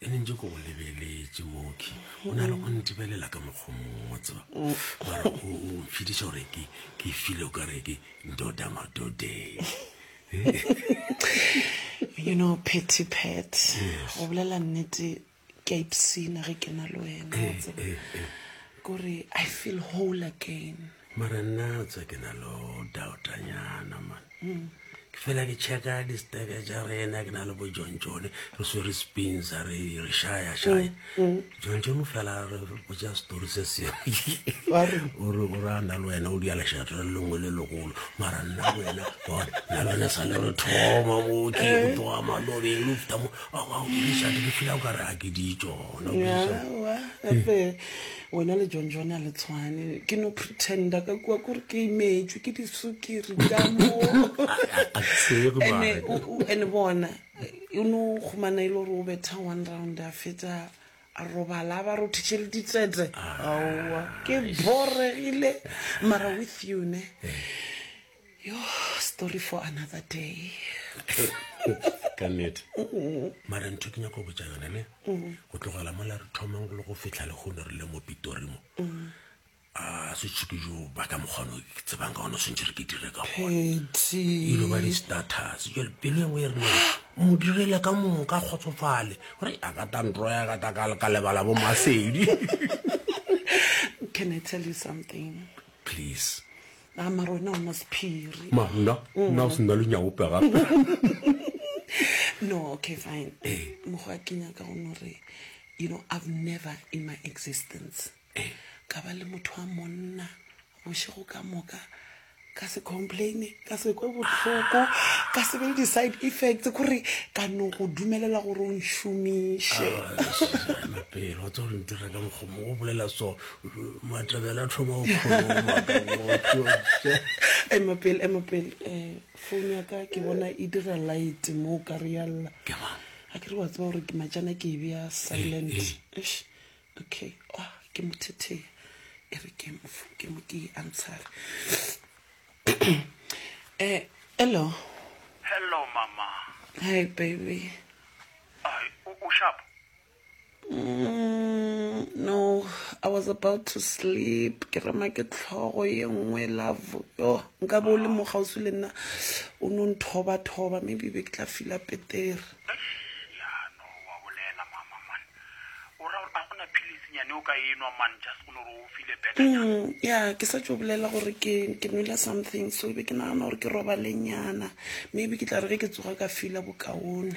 e ne ntse ko go lebeletse moki o na le go ntebelela ka mokgwa mongwe tseba mara o mfitiša gore ke ke file o ka re ke ndoda madodeng you know petty pet go bolela nnete ke a ipsina ge ke na le wena wa tseba kore i feel whole again mara nna tsa ke na lo doubtanyana man ke fela ke checka disteke tša rena ke na le bo john john re swe re spins a re re shaya shaya mm, mm. john john fela re botsa story se seore gore a na le wena o dia lešato le lengwe le legolo mara nna wena bona na lone sa le re thoma mo ke eh. tloa malobeng lo fita mo awa o dišate ke fila o ka re a ke di tsona wena le john john a le tshwane ke no pretenda ka kua kore ke imetšwe ke disukiri ka moene bona o ne o kgomana e le gore o betha one round a fetsa a robala a ba rothiše le ditsete aowa ke boregile mara with you ne eh. Yoh story for another day. ka nnete mara ntho ke nyako botsa yone ne go tlogela mola re thomang le go fitlha le gone re le mo pitori mo a setshuke jo ba ka mokgono ke tsebang ka gone swantse re ke dire ka goneilo ba di-status jale pelo engwe e rena mo direle ka mong ka kgotsofale gore a ka ta ntro ya ka ta ka lebala bo masedi can i tell you something please Na mara wena o na sephiri. Ma nna nna o se nna lunyaope gape. No, okay fine. Mokgwa a kenya ka gone gore you know I've never in my existence ka ba le motho wa monna bošego ka moka ka se complaine ka se kwe bohloko ka se be le di-side effects kore ka no go dumelela gore o nšomiše pele wa tsa gore ntireka mokgomo o bolela so Matabela thoma o ema pele ema pele um phone ya ka ke bona e dira light mo o ka re yalla a ke re wa tseba gore ke majana ke e bea silent eh, eh. Eish, okay oh, ke mothetheya e re ke mo fo- ke mo ke e answere um hello Hello mama. hi baby Ai, u, u sharp. Mm, no, I was about to sleep. Ke rema ke tlhogo ye nngwe love. Yo, nka bo le mo gausi le nna. O no nthoba thoba, maybe be ke tla fila petere. Ya no wa bolela mama man. O ra gore a gona philisi nyane o ka enwa man just go no re o file better nyana. Mm, ya, ke sa tšo bolela gore ke ke nwele something so be ke nagana gore ke roba lenyana. Maybe ke tla re ge ke tsoga ka fila bokaone.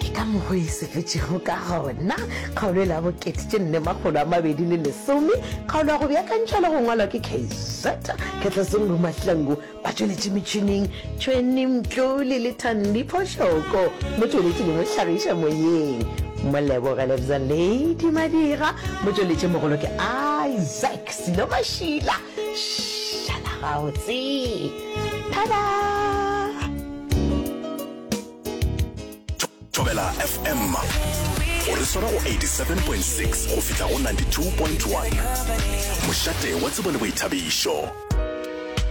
ke ka mogo e sepetšego ka gona kgaolo e la bokete tše nne makgolo a mabedi le lesome kgaolo ya go beakantšha le go ngwalwa ke kz khetlesong bomatlango ba tšweletše metšhineng tšhweni mtlole le thandiphošoko mo tšweletše le mohlagiša moyeng molebogele bza lady madira mo tšweletše mogolo ke isaac selo mašila šala gautse tada thobela fm o re swara go 87.6 go fihla go 92.1 mošate wa tsebo le boithabišo